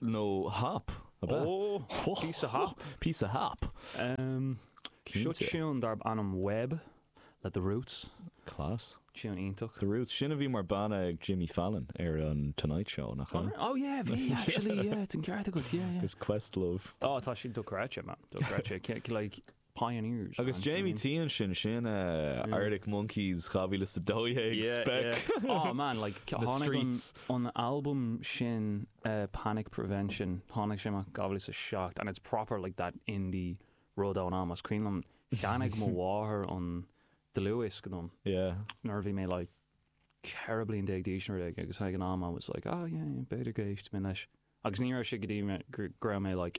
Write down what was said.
nó hop, ab ea? Oh, píosa hop. Píosa hop. Em, seo tiúin darb ainm Web le The Roots. Class. Tiúin iontach. The Roots. Sin a bhí mar banna ag Jimmy Fallon ar an Tonight Show, nach ea? Oh yeah, bhí, actually, yeah, tá an ceart agat, yeah, yeah. Is Questlove. Oh, tá sé dochreidte, man, dochreidte. Like, Pioneers Agus ansin. Jamie T ansin, sin eh, Arctic Monkeys 2012 Yeah, spec. yeah. Aw, man, like, ca- Na tháinig an, streets. an album sin, eh, Panic Prevention, tháinig sé amach 2007, and it's proper, like, that indie rud ón am. Is cuimhin liom, cheannaigh mo mháthair an dlúthdhiosc dom, Yeah. nuair a bhí mé, like, ceithre bliain déag d'aois nó rud, agus ag an am, I was like, oh, yeah, yeah, b'fhéidir go n-éistfidh mé leis. Agus ní raibh sé go dtí go raibh mé, like,